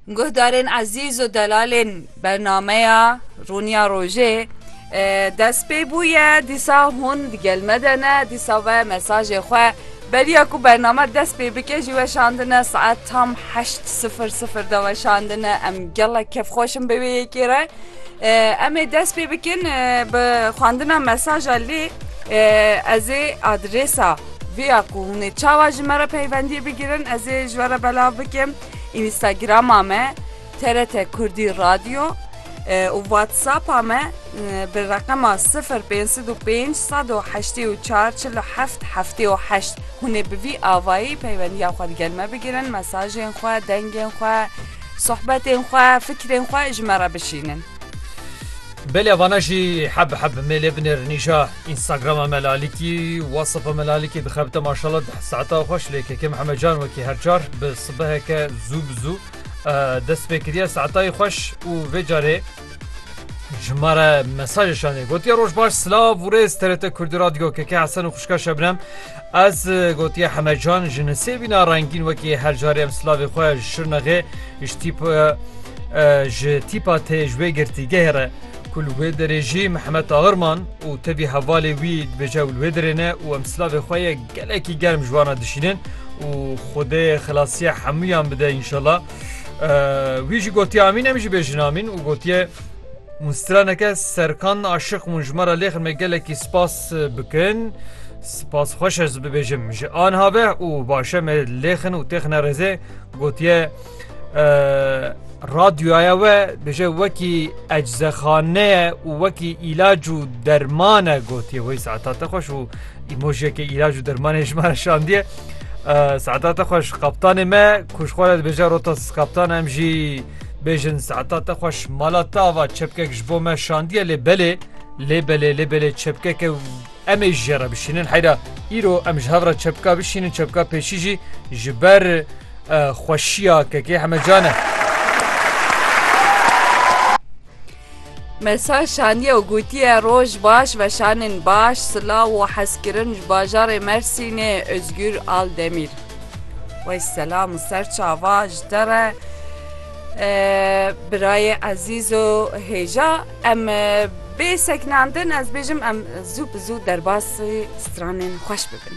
Guhdarên ezîz û delalên bernameya Rûniya Rojê dest pê bûye dîsa hûn digel me de ne dîsa ve mesajê xwe beriya ku bername dest pê bike jî weşandine saet tam heşt sifir sifir de weşandine em gelek kevxweşin bi wê yekê re em ê dest pê bikin bi xwandina mesaja lê ez ê adrêsa Vêya ku hûn ê çawa ji me re peywendiyê bigirin ez ê ji we re belav bikim, Înîstagirama me, TRT Kurdî Radyo û Whatsapp-a me bi reqema sifir pênc sed û pênc sed û heştê û çar çil û heft heftê û heşt. Hûn ê bi vî avayî peywendiya xwe digel me bigirin, mesajên xwe, dengên xwe, sohbetên xwe, fikrên xwe ji me re bişînin. Belê vana jî heb heb mêlê binêrinîja Instagrama me lalikî WhatsAppa me lalikî dixebite maşallah deh saeta xweş lê kekê Mihemed Can wekî her car bi sibeheke zû bi zû dest pê kiriye saetayê xweş û vê carê ji me re mesajê şanê gotiye roj baş silav û rêz TRT Kurdî Radyo keke Hesen û xwişka Şebnem Ez gotiye Hemecan ji nisêbîna rengîn wekî her carê em silavê xwe ji Şirnexê ji tîpa ji tîpa tê ji wê girtîgehê re ku li wê derê jî Mihemed Agirman û tevî hevalê wî dibêje ew li wê derê ne û em silavê xwe yê gelekî germ ji wana dişînin û Xwedê xilasiya hemûyan bide înşela. Wî jî gotiye Amîn em jî bêjin Amîn û gotiye Hûn straneke serkan aşiq bûn ji me re lêxin me gelekî spas bikin. Spas xweş ez bibêjim ji anha be û başe me lêxin û têxine rêzê gotiye radyoya we bêje wekî eczexaneye û wekî îlac û dermane gotiye wê saeta te xweş û îmojiyeke îlac û dermanê ji me şandiye saeta te xweş qaptanê me kuşxwara dibêje rota kaptan em jî bêjin saeta te xweş mala tava çepkek ji bo me şandiye lê belê Lê belê lê belê çepkeke em ê ji jê re bişînin heyra îro em ji hev re çepka bişînin çepka pêşî jî ji ber e, xweşiya kekê hemecan e. Mesaj şaniye û gotiye roj baş veşanên baş silav û hezkirin ji bajarê Mersînê Özgür Aldemîr. Wey selam û ser çava ji te re e, birayê ezîz û hêja Em bê seknandin ez bêjim em zû bi zû derbasî stranên xweş bibin.